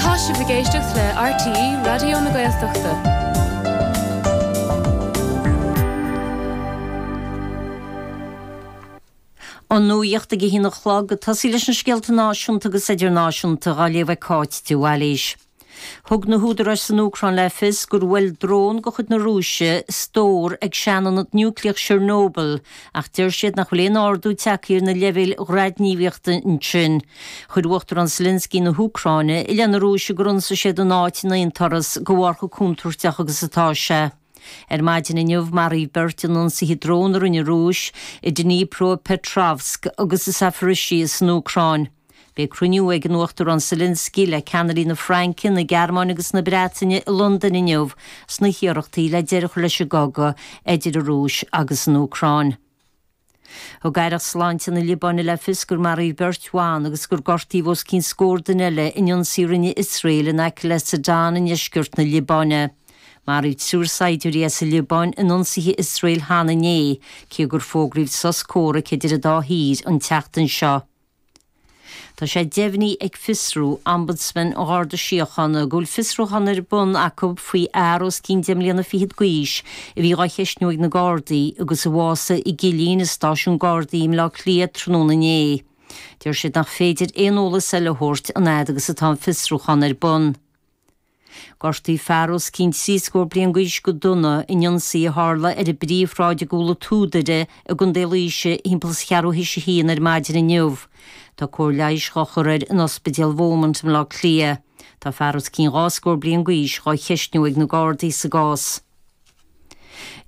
Tá sibh ag éisteacht le RTÉ Raidió na Gaeltachta. An nuaíocht ag a haon a chlog, ag tosaigh leis na scéalta náisiúnta agus idirnáisiúnta dhá léamh ag Cáit de Bhailís. Thug na húdaráis san Úcráin le fios gur bhuail drón de chuid na Rúise stór ag seanionad núicléach Chernobyl ach deir siad nach bhfuil aon ardú tagtha ar na leibhéil radaighníomhaíochta ansin. Chuir Uachtarán Zelensky na hÚcráine i leith na Rúise gur ionsaigh siad an áit in aon turas de bharr chomh contúirteach agus atá sé. Ar maidin inniu, maraíodh beirt in ionsaithe drón a rinne an Rúis i Dnipropetrovsk agus i Zaporizhzhia san Úcráin. Beidh cruinniú ag an Uachtarán Zelensky le ceannairí na Fraince, na Gearmáine agus na Breataine i Londain inniu sna hiarrachtaí le deireadh a chur leis an gcogadh idir an Rúis agus an Úcráin. Thug aireacht sláinte na Liobáine le fios gur maraíodh beirt bhan agus gur gortaíodh os cionn scór duine eile in ionsaí a rinne Iosrael in aice le Sidon i ndeisceart na Liobáine. Maraíodh triúr saighdiúirí as an Liobáin in ionsaithe Iosrael cheana inné, cé gur fógraíodh sos comhraic idir an dá thír an tseachtain seo. Tá sé deimhnithe ag Fiosrú Ombudsman an Gharda Síochána go bhfuil fiosrúchán ar bun acu faoi fhear os cionn deich mbliana fichead d'aois a bhí dhá cheistniú ag na Gardaí agus a bhásaigh i gcillín i Stáisiún Gardaí i mBleá Cliath tráthnóna inné. Deir siad nach féidir aon eolas eile a thabhairt an fhad agus atá an fiosrúchán ar bun. Gortaíodh fear os cionn trí scór bliain d'aois go dona in ionsaí a tharla ar an bpríomhshráid i gCúl an tSúdaire i gContae Laoise thimpeall is cheathrú tar éis a haon ar maidin inniu. Tá cóir leighis dhá chur air in Ospidéal Beaumont i mBaile Átha Cliath. Tá fear os cionn dhá scór bliain d'aois dhá cheistniú ag na Gardaí sa gcás.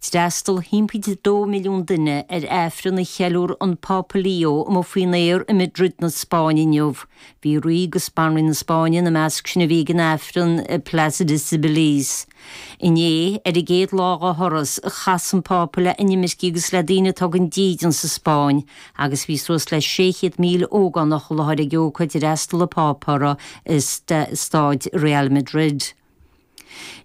D'fhreastail 1.2 milliún duine ar Aifreann a cheiliúr an Pápa Leo amuigh faoin aer i Madrid na Spáinne inniu. Bhí Rí agus Banríon na Spáinne ina measc sin a bhí ag an Aifreann i Plaza de Cibeles. Inné, ar an gcéad lá dá thuras, chas an Pápa le hinimircigh agus le daoine atá gan dídean sa Spáinn agus bhí suas le 600,000 ógánach i láthair ag ócáid a d'fhreastail an Pápa uirthi i Staid Real Madrid.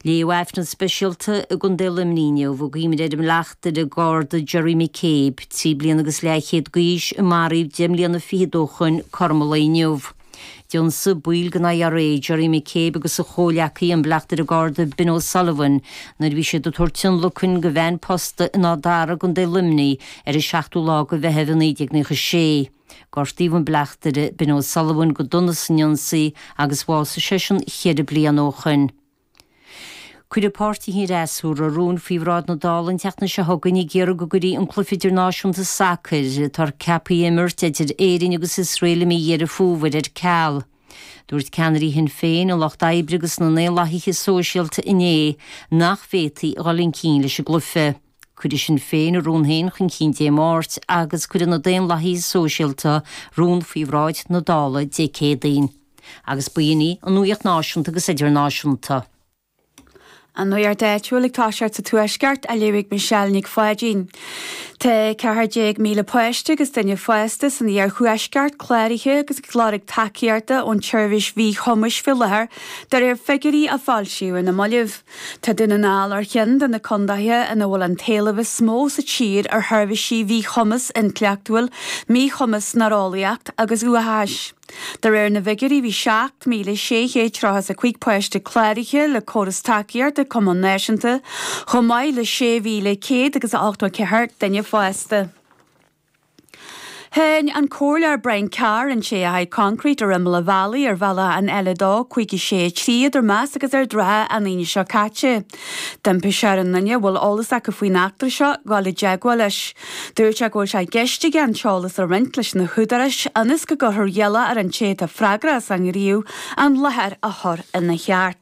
Léadh Aifreann speisialta i gContae Luimnigh inniu i gcuimhne ar an mBleachtaire Garda Jerry McCabe, trí bliana agus leathchéad d'aois, a maraíodh deich mbliana fichead ó shoin cothrom an lae inniu. D'ionsaigh baill den IRA, Jerry McCabe agus a chomhleacaí, an Bleachtaire Garda Ben O'Sullivan, nuair a bhí siad ag tabhairt tionlacain do veain posta in Áth Dara i gContae Luimnigh, ar an seachtú lá de Mheitheamh 1996. Gortaíodh an Bleachtaire Ben O'Sullivan go dona san ionsaí agus bhásaigh seisean ceithre bliana ó shin. Cuirfidh páirtithe an fhreasúra rúin faoi bhráid na Dála an tseachtain seo chugainn ag iarraidh go gcuirfí an cluiche idirnáisiúnta sacair atá ceaptha a imirt idir Éirinn agus Iosrael i mí Dheireadh Fómhair ar ceal. Dúirt ceannairí Shinn Féin, an Lucht Oibre agus na nDaonlathaithe Sóisialta inné nach bhféadfaí a dhul chun cinn leis an gcluiche. Cuirfidh Sinn Féin a rún féin chun cinn Dé Máirt agus cuirfidh na Daonlathaithe Sóisialta rún faoi bhráid na Dála Dé Céadaoin. Agus b'shin í an nuaíocht náisiúnta agus idirnáisiúnta. An nuaíocht áitiúil ag toiseacht sa Tuaisceart, a léirigh Michelle Nic Pháidín. Tá 14,000 páiste agus duine fásta san iarthuaisceart cláraithe agus ag lorg tacaíochta ón tseirbhís mhíchumais faoi láthair, de réir figiúirí a foilsíodh ar na mallaibh. Tá Dún na nGall ar cheann de na contaetha ina bhfuil an t-éileamh is mó sa tír ar sheirbhísí mhíchumas intleachtúil, míchumas néareolaíoch agus uathachais. De réir na bhfigiúirí bhí 7,635 páiste cláraithe le córas tacaíochta cumais náisiúnta chomh maith le 6,184 duine fásta. Cháin an Comhairleoir Brian Carr an té a chaith concrete ar imeall an bhealaigh ar bhealach an L2563 idir Más agus Ard an Rátha an Aoine seo caite. D'impigh sé ar aon duine a bhfuil eolas acu faoin eachtra seo dul i dteagmháil leis. Dúirt sé go bhfuil sé i gceist aige an t-eolas a roinnt leis na húdaráis ionas go gcuirfear iallach ar an té atá freagrach as an ngníomh an láthair a chur ina cheart.